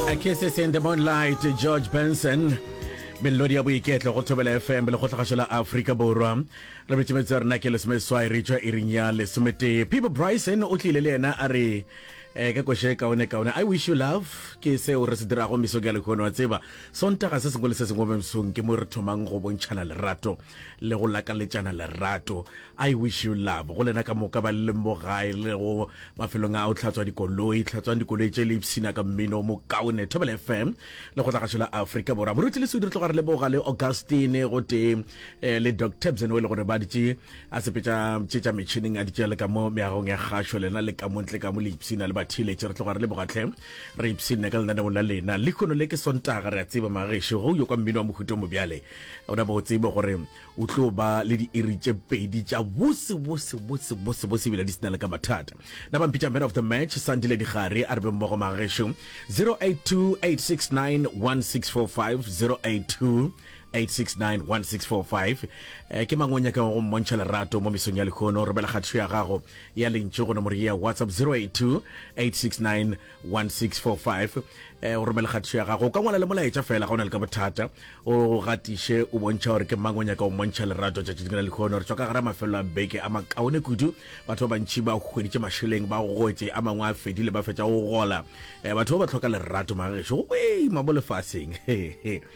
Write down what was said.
A Kisses in the Moonlight, George Benson. melodi ya boiketlo go thobela fm le kgotlhagašo la aforika borwa re betšemetso ya rena ke lesomeswai re tšwa iring ya lesometee people bryson o tlile le yena a re eh, ka koše kaone kaone i wish you love ke seo re se dirago meso ke ya lekgono wa tseba sontaga se sengwe le se sengwe mo mesong ke mo re thomang go bontšhana lerato le go lakaletšana lerato I wish you love go lena ka moka ba leng mo gae le go mafelong a o tlhatswa dikoloi tlhatswang dikoloi tše le ipsina ka mmino mo kaone thobela fm le go tlagašo la afrika borwa moruti le sudi re tloga re leboga le augustine go tee eh, le doc tabsen o e le gore ba ditše a sepetša tše tša metšhineng a ditše le ka mo meagong ya kgašo lena le ka montle ka mo le ipsina le bathiletše re tloga re leboga tlhe re ipsine ka lenaneong la lena le kgono le ke sontaga re a tseba magešo go yo kwa mmino wa mohuto mobjale o na bo o tsebe gore O tlo ba le diiri tše pedi tša bose bose bose bose bose ebile di sena le ka mathata. Na ba mpitša man of the match Sandile Digare a re be mmogo magešo 0828691645 0828691645 eh, ke mang o nyakago go mmontšha lerato mo mesong ya lekhono romela kgathišo ya gago ya lentšu go nomoro ye ya whatsapp 082869 1645 o romele kgatišo ya gago o ka ngwala le molaetša fela ga o na le ka bothata o gatiše o bontšha gore ke mang o nyaka o mmontšha lerato tšatši dingwe la lekgono re tswa ka gara mafelelo a beke a makaone kudu batho ba bantšhi ba hweditše mašeleng ba gotše a mangwe a fedile ba fetša go gola batho ba ba tlhoka lerato magešo go boima mo lefaseng